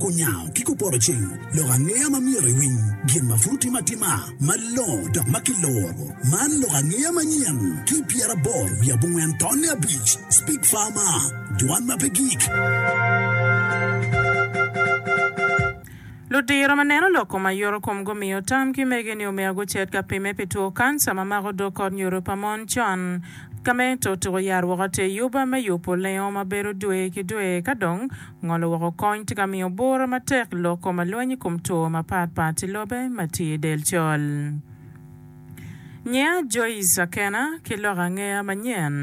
Kunyango ki kupotoceng lok angeya ma myero iwiny gin ma pud otime atima malongo dok ma kiloro. Man lok angeya manyen ki pyeraboro wiye abongwen tonne abic, Speak Farmer, Dwan ma pe gik. Ludiro ma neno lok kom aye oro kom gumiyo tam ki mege ni omea gucet ka pimme pi two kanca ma mako dog kot nyodo pa mon con. Ka me to tuko yat woko ateyyuba me yubo lengo ma bedo dwe ki dwe ka dong Ngolo woko kony tye ka miyo bura matek lok kom alweny i kom two mapat pat i lobe ma tye i del col. Nyiya Joyce Akena ki lok angeya manyen.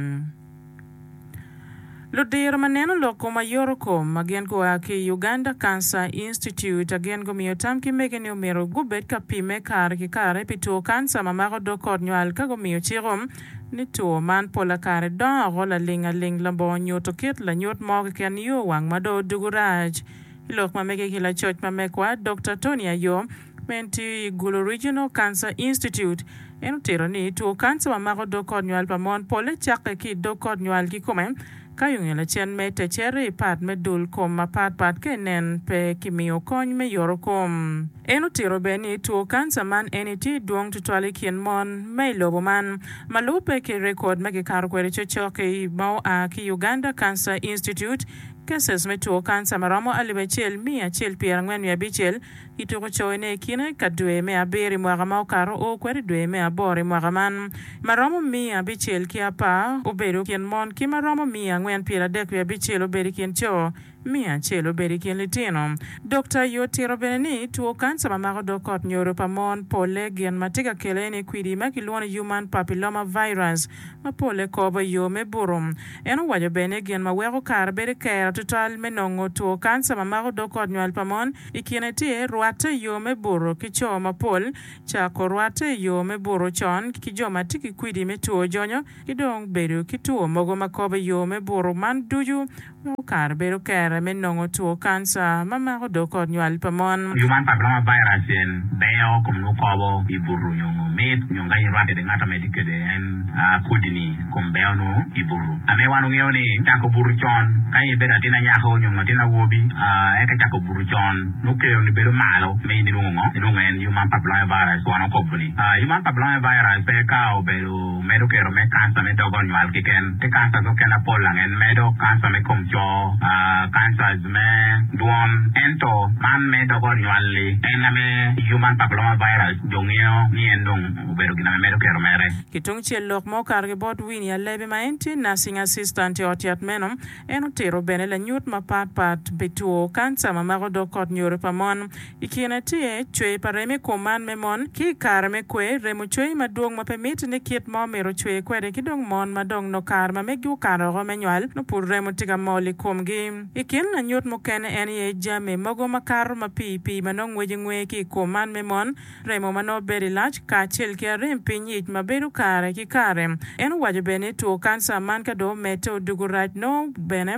Ludiro ma neno lok kom ayoro kom ma gin gua ki i Uganda Cancer Institute a gin gumiyo tam ki mege ni omyero gubed ka pimme kare ki kare pi two kanca ma mako dog kot nywal ka gumiyo ciko ni two man pola kare dongo ago laling aling labongo nyuto kit lanyut mo keken yo wang ma dong odugu rac. I lok ma mege ki lacoc ma megwa, Dokta Tony Ayom, ma en tiyo i Gulu Regional Cancer Institute, en otito ni two kanca ma mako dog kot nywal pa mon pole cakke ki i dog kot nywal kikome ka yung i lacen mete cere i pat me dul kom mapatpat ka inen pe kimiyo kony me yorokom. En otito bene ni two kanca man eni tye dwong tutwal i kin mon ma i lobo man. Ma lubbe ki rekod ma kikato kwede cocoki ma oa ki Uganda Cancer Institute, cases me two kanca ma romo alip acel miya acel pyerangwen wiye abicel kituko coyo ne i kine ka dwe me abiro i mwaka ma okato oo kwede dwe me aboro i mwaka man. Ma romo miya abicel ki apar obedo i kin mon ki ma romo miya angwen pyeradek wiye abicel obedo i kin co. Me acel, obedo i kin litino. Dokta aye otito bene ni two kanca ma mako dog kot nyodo pa mon polle gin ma tye ka kele ni kwidi ma kilwongo ni Human Papilloma Virus ma polle kobo i yo me butu. En owaco bene ni gin ma weko kare bedo kera tutwal me nongo two kanca ma mako dog kot nywal pa mon i kine tye rwatte i yo me butu ki co mapol cako rwatte i yo me butu con ki jo ma tye ki kwidi me two jonyo ki dong bedo ki two mogo ma kobo yo me buto, man ducu weko kare bedo kere me nongo two kanca ma mako dog kot nywal pa mon. Human Papilloma Virus en beyo kom nwo kobo i buto nyo ngo mit nyo nga in irwat kwede ngat amedi kwede en kodi ni kom beyo nwo i buto. Ame wan ongeyo ni cako buto con ka in ibedo atin anyako nyo ngo atin awobi eka cako buto con nwo kero ni bedo malo me in inwongo ngo inwongo en Human Papilloma Virus wano kobo ni Human Papilloma Virus pe ka obedo medo kero me kanca me dog onywal kiken ki kanca ki okene apol angen medo kanca me kom co, cancers, me dwon ento man me dog onywal li en ame human papilloma virus jo ngeyo ni en dong obedo gin ame medo kero mere. Ki tung cel lok ma okato ki bot Winnie Alebi ma en tye Nursing Assistant i ot yat meno, en otito bene lanyut mapat pat pi two kanca ma mako dog kot nyoro pa mon, I kine tye cwer pa remo i kom man me mon. Ki i kare me kwer, remo cwer madwong ma pe mitte ni kit ma omyero ocwer kwede ki dong mon ma dong nongo kare ma meggi okato woko me nywal nongo pud remo tye ka mol i komgi. I kin lanyut mukene en aye jami mogo ma kato ma pii pii ma nongo ngwece ngwe ki i kom man me mon, remo ma nongo bedo i lac, kacel ki arem piny ic ma bedo kare ki kare. En owaco bene ni two kanca man ka dong omedde odoko rac nongo bene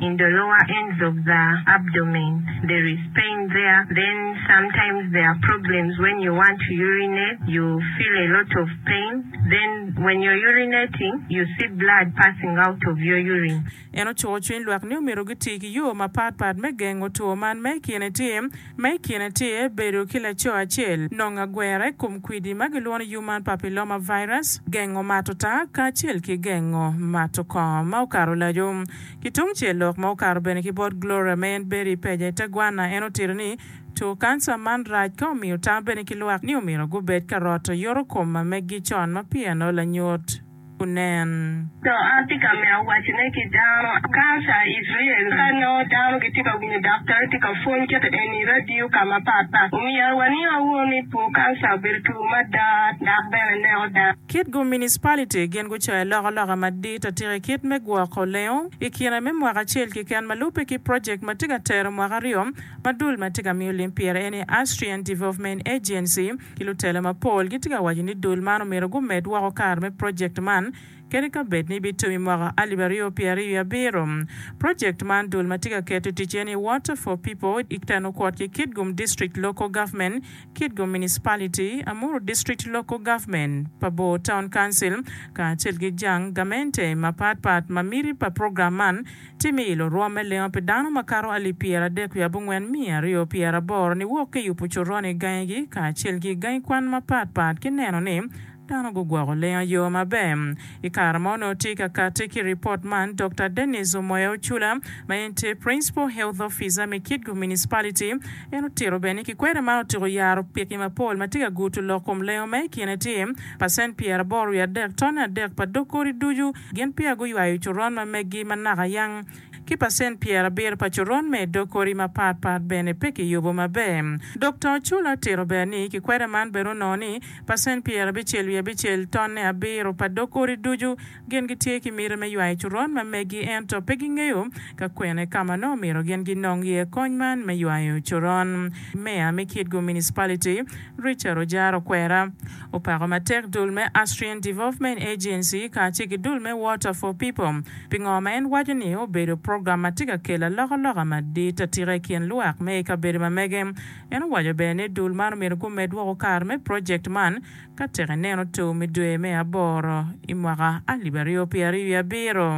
in the lower ends of the abdomen there is pain there then sometimes there are problems when you want to urinate you feel a lot of pain then when you're urinating you see blood passing out of your urine. En ocuko cwiny lwak ni omyero giti ki yo mapat pat me gengo two man ma i kine tye ma i kine tye bedo ki laco acel, nongo agwera i kom kwidi ma gilwongo ni human papilloma virus, gengo mato taa kacel ki gengo mato kong ma okato laco. Ki tung cel lok ma okato bene ki bot Gloria ma en bedo i peja i te gwanna, en otito ni, Two kanca man rac ka omiyo tam bene ki lwak ni omyero gubed ka roto yoto kom ma meggi con ma pieno lanyut onen. To atye ka mito wacone ki dano, kanca i Icrael ka nongo dano gitye ka winyo daktar tye ka pwony kit eni i radio ka mapat pat, omyero waniang wunu ni two kanca obedo two mada dok bene neko dano. Kit gu municipality gin gucayo loko loka madit atika i kit me gwoko lengo i kine me mwaka acel kiken ma lube ki project ma tye ka tero mwaka aryo ma dul ma tye ka miyo lim pire eni Austrian Development Agency ki lutelo mapol gitye ka waco ni dul man omyero gumed woko kare me project man kadi ka bed ni bitum i mwaka alip aryo pyer aryo i abiro project man dul ma tye ka keto i tic eni Water for People i teno kwot ki Kitgum District Local Government Kitgum Municipality, Amuru District Local Government, pa Bor Town Council, kacel ki jang gamente mapat pat ma miti pa program man tye me ilo rwom me lengo pi dano makato alip pyeradek wiye abongwen miya aryo pyeraboro niwok ki yubo coron i gangigi kacel ki gangi kwan mapat pat ki neno ni Dano gugwoko lenga yo maber. I kare ma onongo tye ka kati ki ripot man, Dokta Dennis Omoya Ocula, ma en tye Principal Health Officer me Kitgum Municipality, en otito bene ni kikweri man otyeko yaro piki mapol ma tye ka guto lok kom lengo ma i kine tye pacent pyeraboro wiye adek, tone adek pa dog kodi ducu, gin peya guywayo coron ma meggi ma naka yang. ki pacent pyerabiro pa coron me dog kodi mapat pat bene pe kiyubo maber. Dokta Ochula tito bene ni kikwede man bene onongo ni pacent pyerabicel wiye abicel, tonne abiro, pa dog kodi ducu gin gitye ki miti me ywayo coron ma megi ento pe gingeyo ka kwene ka ma nongo myero gin ginong iye kony man me ywayo coron. Meya me Kitgum Municipality, Richard ojaro kwera. Opako matek dul me Austrian Development Agency kacel ki dul me Water for People pi ngo ma en waco ni obedo program ma tye ka kelo alokaloka madit atika i kin lwak me i kabedo ma mege. En owaco bene ni dul man omyero gumed woko kare me project man ka tek ineno tur me dwe me aboro i mwaka alip aryo pyeraryo wiye abiro.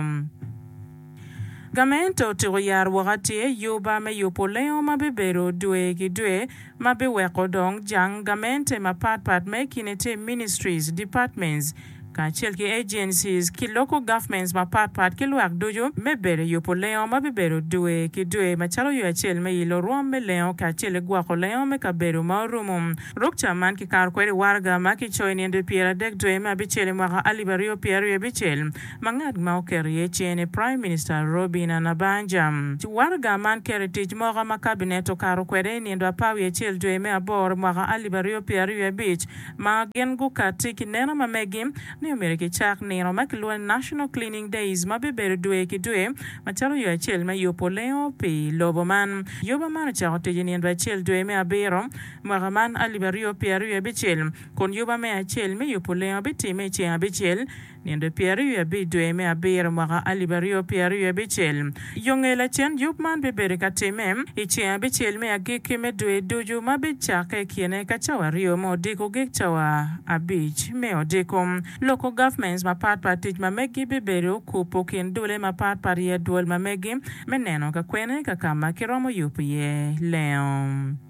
Gamente otyeko yaro woko atir juba me yubo lengo ma bibedo dwe ki dwe ma biweko dong jang gamente mapat pat me kine tim ministries, departments, kacel ki agencies ki local governments mapat pat ki lwak ducu me bedo i yubo lengo ma bibedo dwe ki dwe macalo yo acel me ilo rwom me lengo kacel ki gwoko lengo me kabedo ma orumo ruk ca man kikato kwede waraga ma kicoyo i nino dwe pyeradek dwe me abicel i mwaka alip aryo pyeraryo abicel. ma ngat ma oketo iye cene, Prime Minister Robinah Nabbanja, waraga man keto i tic moko ma Kabinet okato kwede i nindo apar wiye acel dwe me aboro mwaka alip aryo pyera aryo wiye abic ma gin gukatti ki neno ma megi ni omyero kicak nino ma kilwongo ni National Cleaning Days ma bibedo dwe ki dwe macalo yo acel me yubo lengo pi lobo man. Yoba man ocako tic i nindo acel dwe me abiro mwaka man alip aryo pyera aryo abicel kun yoba me acel me yubo lengo bitimme i ceng abicel Nino pyeraryo i abic dwe me abiro mwaka alip aryo pyeraryo abicel, yo nge lacen yub man bibedo ka timme i ceng abicel me agikki me dwe ducu ma bicakke i kine ka cawa aryo me odiko gik cawa abic me odiko. Loko governments mapat pat tic ma meggi bibedo okupu kin dule mapat pat i adwol ma meggi me neno ka kwene ka kama kiromo yubu iye lengo.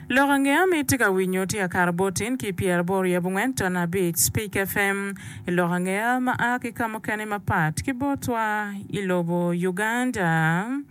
Lok ange ma itye ka winyo tye akato bot in ki pyer aboro yab ongwen ton abic Speak FM i lok ange ma a ki ka mukene mapat ki botwa i lobo Uganda.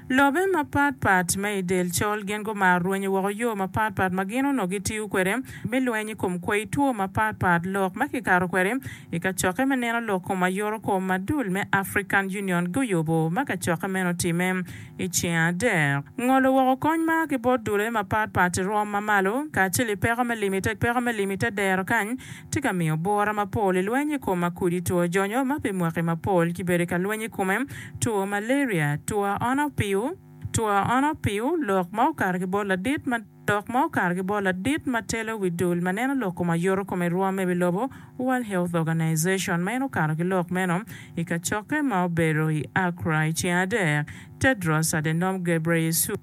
Lobe mapat pat ma i del col gin gumaro rwenyo woko yo mapat pat ma gin onongo gitiyo kwede me lweny i kom kwai two mapat pat lok ma kikato kwede i kacokke me neno lok kom ayoto kom ma dul me African Union guyubo ma kacokke meno otime i ceng adek. Ngolo woko kony ma a ki bot dulle mapat pat i rwom ma malo, kacel i peko me lim i te peko me lim i te dero kany, tye ka miyo bwura mapol i lweny i kom makudi two jonyo ma pi mwaki mapol ki bedo ka lweny i kome, two malaria, two aona opiu, two aona opiu, lok ma okato ki bot ladit ma. Dok ma okato ki bot ladit ma telo wi dul ma neno lok kom ayoto kom i rwom me wi lobo, World Health Organization, ma en okato ki lok meno i kacokke ma obedo i Accra i ceng adek, Tedros Adhanom Ghebreyesus,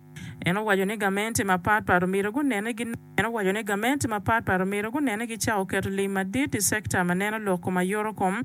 en owaco ni gamente mapat pat omyero gunene gi En owaco ni gamente mapat pat omyero gunene gi cako keto lim madit i sekta ma neno lok kom ayoto kom,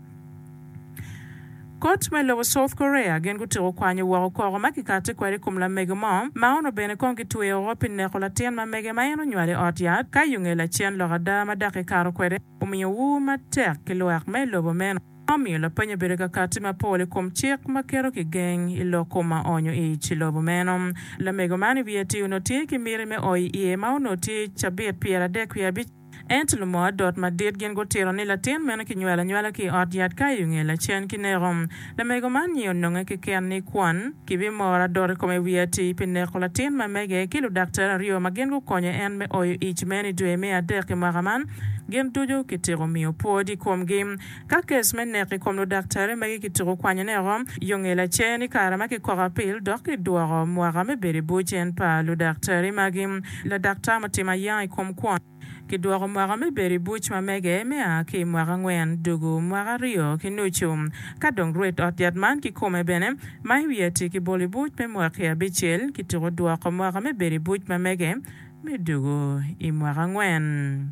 Kot me lobo South Korea gin gutyeko kwanyo woko koko ma kikati kwede i kom lamege mo ma ono bene kong gitweyo woko pi neko latin ma mege ma en onywalo i ot yat ka yunge lacen lok ada ma dok kikato kwede omiyo ur matek ki lwak me lobo meno ma omiyo lapeny obedo ka kati mapol i kom cik ma keto kigeng i lok kom ma onyo ic i lobo meno. Lamego man i wiye-ti onongo tye ki miti me oyo iye ma onongo tye cabit pyeradek wiye abic. Ento lumo adot madit gin gutito ni latin meno kinywelo anywala ki i ot yat ka i onge lacen ki neko. Lamego man nyi ononge keken ni kwon kibimoro adot i kome wiye atir pi neko latin ma mege ki ludaktari aryo ma gin gukonyo en me oyo ic meno i dwe me adek i mwaka man gin ducu kitiko miyo pwod i komgi. Ka kes me nek i kom ludaktari magi kituko kwanyone oko, yo nge lacer ni kare ma kikoko apil dok kidwoko mwaka me bedo i bur cen pa ludaktari magi, ladaktar mutimo ayanga i kom kwon, kidwoko mwaka me bedo i buc ma mege me a ki i mwaka angwen dugu mwaka aryo ki nucu. Ka dong rwed ot yat man kikome bene ma i wiye tye kibolo i buc me mwaki abicel, kituko dwoko mwaka me bedo i buc ma mege. me dwogo i mwaka angwen.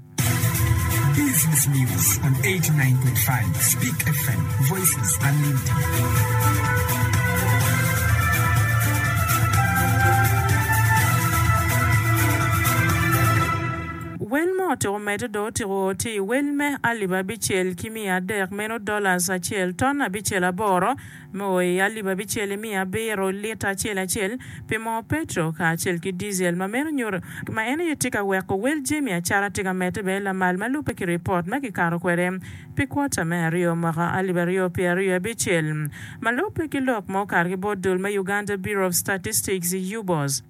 Wel ma otyeko medde dong otyeko tye i wel me alip abicel ki miya adek, meno dollars acel, ton abicel aboro. Me o i alip abicel imiyo abiro lita acel acel pi moo petro kacel ki diesel ma meno nyuto ma en aye tye ka weko wel jami acara tye ka medde bene lamal ma lubbe ki ripot ma kikato kwede pi kwota me aryo mwaka alip aryo pyera aryo i abicel ma lubbe ki lok ma okato ki bot dul me Uganda Bureau of Statistics, UBOS.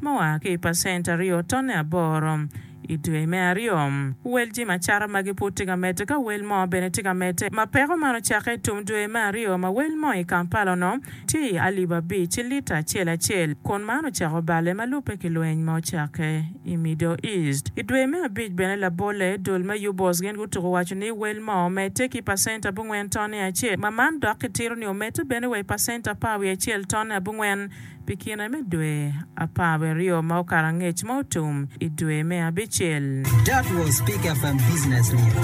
ma oa ki i pacent aryo tonne aboro i dwe me aryo. Wel jami acata magi pud tye ka medde ka wel mo bene tye ka medde. Ma peko man ocakke i tum dwe me aryo ma wel mo i Kampala onongo tye i alip abic i lita acel acel kun man ocako balle ma lubbe ki lweny ma ocakke i Middle East. I dwe me abic bene labolle dul me UBOS gin gutuko waco ni wel mo omedde ki pacent abongwen tonne acel ma man dok kitito ni omedde bene wa i pacent apar wiye acel tonne abongwen Pi kine me dwe apar wiye aryo ma okato angec ma otum i dwe me abicel. That was Pick FM Business News.